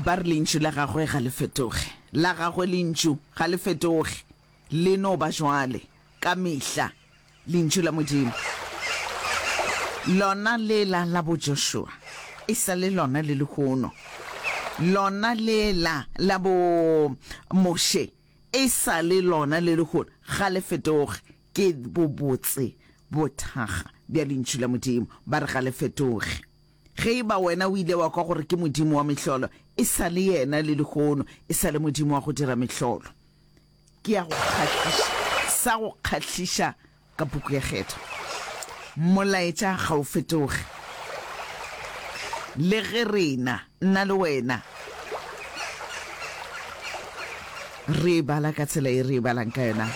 Ba re Lentšu la Gagwe ga le fetoge. La Gagwe Lentšu ga le fetoge. Le no ba jwale, ka mehla, Lentšu la Modimo. Lona lela la boJoshua, e sa le lona le lehono. Lona lela la boMoshe, e sa le lona le lehono. Ga le fetoge. Ke bobotse bothakga bja Lentšu la Modimo. Ba re ga le fetoge. Ge e ba wena o ile wa kwa gore ke modimo wa mehlolo, e sa le yena le lehono, e sa le modimo wa go dira mehlolo. Ke ya go kgahliša, sa go kgahliša ka puku ya kgetho. Molaetša ga o fetoge. Le ge rena, nna le wena, re e bala ka tsela e re e balang ka yona,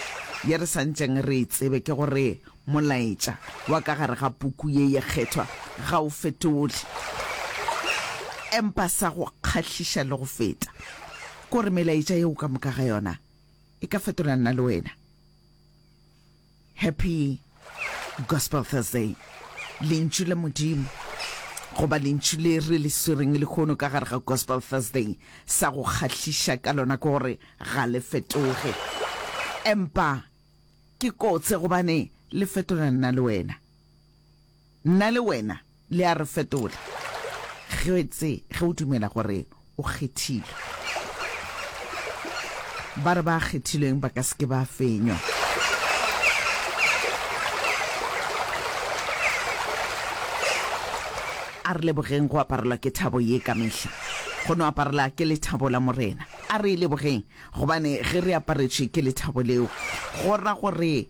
ye re sa ntšeng re e tsebe, ke gore Molaetša wa ka gare ga puku ye ye kgethwa ga o fetoge. Empa sa go kgahliša le go feta ke gore melaetša yeo ka moka ga yona e ka fetola nna le wena. Happy Gospel Thursday. Lentšu la Modimo, goba lentšu le re le swereng lehono ka gare ga Gospel Thursday, sa go kgahliša ka lona ke gore ga le fetoge. Empa Ke kotse gobane le fetola nna le wena. Nna le wena le a re fetola getse ge o dumela gore o kgethilwe. Ba re ba kgethilweng ba ka se ke ba fenywa. A re lebogeng go aparelwa ke thabo ye ka mehla. Go no aparela ke lethabo la Morena. A re e lebogeng Gobane ge re aparetšwe ke lethabo leo, go ra gore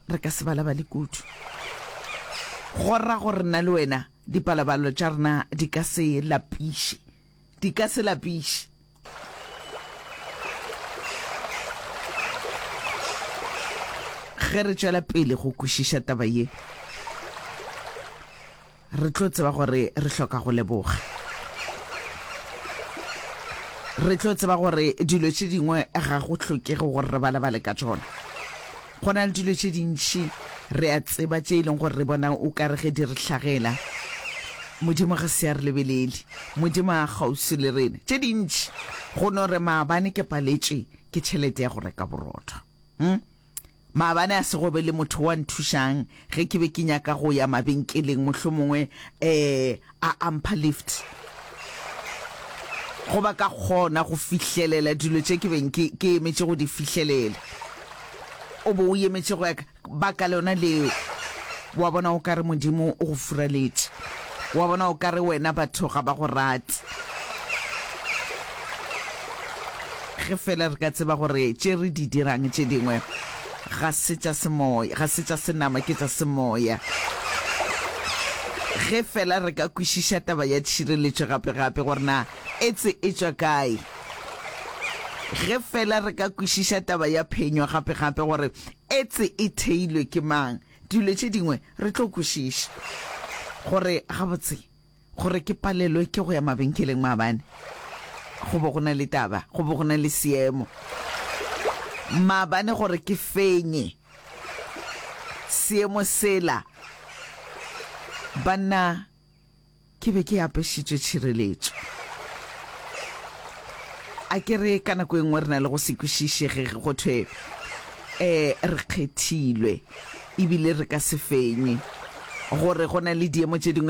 re ka se balabale kudu. Go ra gore nna le wena dipalabalo tša rena di ka se lapiše, di ka se lapiše. Ge re tšwela pele go kwešiša taba ye, Re tlo tseba gore re hloka go leboga. Re tlo tseba gore dilo tše dingwe ga go hlokege gore re balabale ka tšona. Go na le dilo tše dintši re a tseba tše e leng gore re bona o ka re ge di re hlagela Modimo ga se a re lebelele. Modimo a kgauswi le rena. Tše dintši go no re maabane ke paletše ke tšhelete ya go reka borotho. Hmm? Maabane a se go be le motho wa nthušang ge ke be ke nyaka go ya mabenkeleng, mohlomongwe um a a mpha lift go ba ka kgona go fihlelela dilo tše ke beng ke ke emetše go di fihlelela. O bo o emetše go ya ka baka lona leo, wa bona o ka re Modimo o go furaletše. Wa bona, o ka re wena batho ga ba go rate. Ge feela re ka tseba gore tše re di dirang tše dingwe ga se tša semoya, ga se tša senama, ke tša semoya. Ge feela re ka kwešiša taba ya tšhireletšo gape-gape gore na etse e tšwa kae. Ge feela re ka kwešiša taba ya phenyo gape-gape gore etse e theilwe ke mang. Dilo tše dingwe re tlo kwešiša gore gabotse gore ke palelwe ke go ya mabenkeleng maabane go bo go na le taba, go bo go na le seemo maabane gore ke fenye seemo sela banna Ke be ke apešitšwe tšhireletšo. A ke re ka nako e nngwe re na le go se kwešišege ge go thwe um re kgethilwe ebile re ka se fenye gore go na le diemo tše dingwe